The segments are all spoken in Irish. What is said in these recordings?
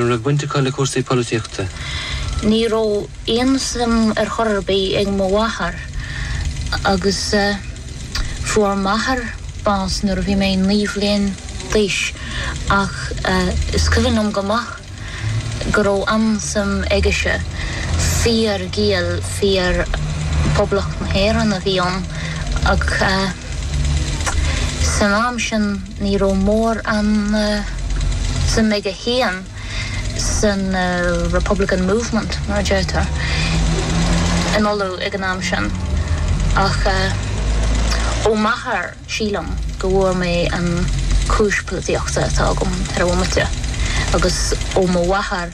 Ní raibh baint acu le cúrsaí polaitíochta. Ní raibh aon suim ar chor ar bith ag mo mháthair agus fuair m'athair bás nuair a bhí mé naoi mbliana d'aois ach is cuimhin liom go maith go raibh an-suim aigese. Fíor-Ghael, fear Poblacht na hÉireann a bhí ann ach san am sin, Ní raibh mórán suim agam féin san Republican Movement, mar a deirtear, in Uladh ag an am sin, ach ó m'athair, sílim, go bhfuair mé an cúis polaitíochta atá agam ar an bhomaite, agus ó mo mháthair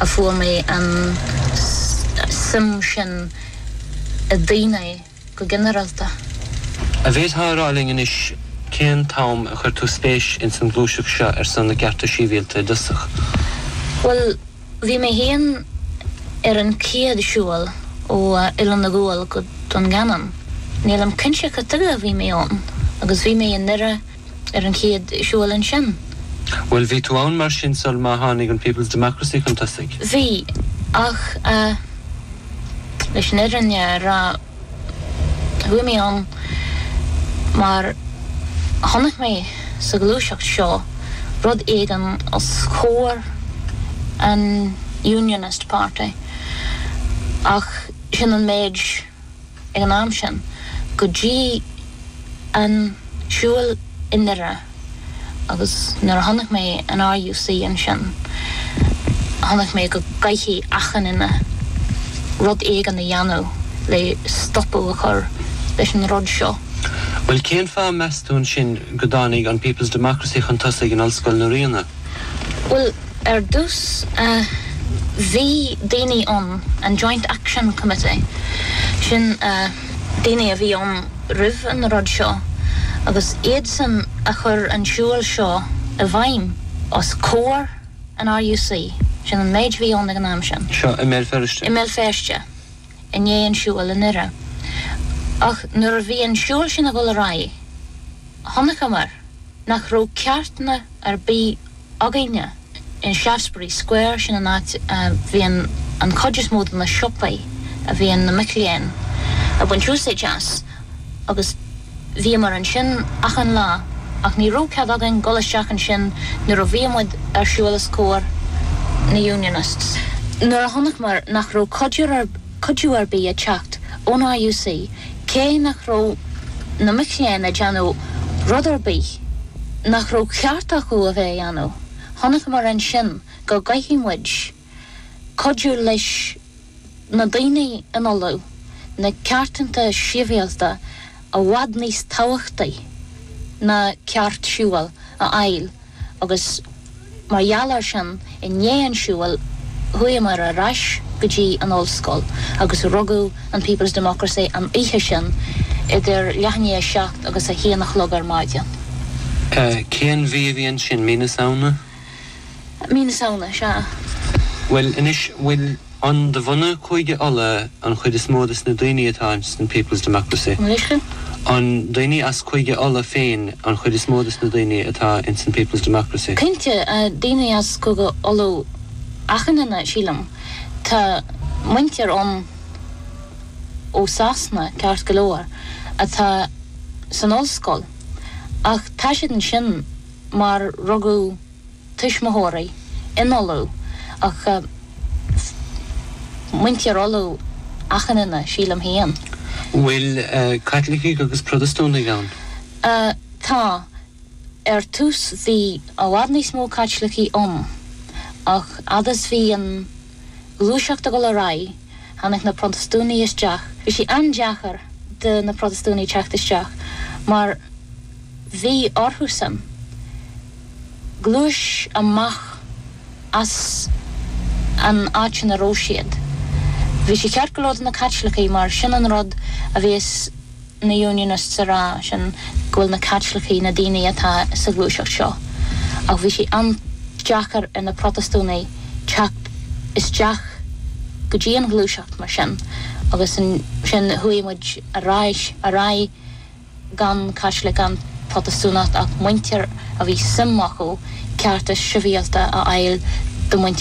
a fuair mé an suim sin i daoine. go ginearalta. An bhféadfá a rá linn anois cén t-am a chuir tú spéis ins an ghluaiseacht seo ar son na gcearta síbhialta i dtosach? Bhuel, bhí mé fhéin ar an chéad siúl ó Oileán an Ghuail go Dún Geanainn. Nílim cinnte cad chuige a bhí mé ann agus bhí mé i nDoire, ar an chéad siúl ansin. Bhuel, bhí tú ann mar sin sular tháinig an People's Democracy chun tosaigh? Bhí, ach eh, leis an fhirinne a rá, chuaigh mé ann mar chonaic mé sa ghluaiseacht seo rud éigin os comhair an Unionist Party ach sin an méid. ag an am sin, go dtí an siúil i nDoire agus nuair a chonaic mé an RUC ansin, chonaic mé go gcaithfidh achan duine rud éigin a dhéanamh le stopadh a chur leis an rud seo. Bhuel, cén fáth, meas tú, ansin, go dtáinig an People's Democracy chun tosaigh in Ollscoil na Ríona? Bhuel, Ar dtús, bhí daoine ann, an Joint Action Committee, sin daoine a bhí ann roimh an rud seo, agus iadsan a chuir an siúil seo i bhfeidhm os comhair an RUC, sin an méid a bhí ann ag an am sin. Seo i mBéal Feirste? I mBéal Feirste, i ndiaidh an siúil i nDoire. Ach nuair a bhí an siúil sin ag dul ar aghaidh, chonaiceamar nach raibh cearta ar bith againne in Shaftesbury Square, sin an áit a mbíonn an chuid is mó de na siopaí a bhíonn na mic léinn ag baint úsáid as agus bhíomar ansin achan lá ach ní raibh cead againn dul isteach ansin nuair a bhíodh muid ar siúl os comhair na Unionists. Nuair a chonaiceamar nach raibh cuidiú ar cuidiú ar bith ag teacht ón RUC cé nach raibh na mic léinn ag déanamh rud ar bith nach raibh ceart acu a bheith a dhéanamh. Chonacamar ansin go gcaithfidh muid cuidiú leis na daoine in Uladh na ceartanna sibhialta i bhfad níos tábhachtaí ná ceart siúil a fháil. agus mar gheall air sin, i ndiaidh an tsiúil, chuamar ar ais go dtí an ollscoil agus rugadh an People's Democracy an oíche sin idir leath i ndiaidh a seacht agus a haon a chlog ar maidin. Cén mhí a bhí ansin? Mí na Samhna? Mí na Samhna, sea. Bhuel, anois, bhfuil. An de bhunadh Chúige Uladh an chuid is mó de na daoine atá ins an People's Democracy? An daoine as Cúige Uladh féin an chuid is mó de na daoine atá ins an People's Democracy? Cinnte, daoine as Cúige Uladh achan duine, sílim. Tá muintir ann ó Shasana, ceart go leor, atá san ollscoil, ach tá siad ansin mar rugadh. tuismitheoirí in Uladh ach muintir Uladh achan duine, sílim féin. Bhfuil Caitlicigh agus Protastúnaigh ann? Tá. Ar tús bhí i bhfad níos mó Caitlicigh ann ach fhad is a bhí an ghluaiseacht ag dul ar aghaidh tháinig na Protastúnaigh isteach. Bhí sé an-deacair do na Protastúnaigh teacht isteach mar bhí orthusan, gluaiseacht amach as an áit ina raibh siad. Bhí sé ceart go leor do na Caitlicigh mar sin an rud a bhíos na Unionists ag rá, sin go bhfuil na Caitlicigh, na daoine atá sa ghluaiseacht seo, ach bhí sé an-deacair ar na Protastúnaigh teacht isteach go dtí an ghluaiseacht mar sin agus sin chuaigh muid ar aghaidh, ar aghaidh. gan Caitlicigh gan Protastúnacht ach muintir a bhí suim acu cearta sibhialta a fháil do mhuintir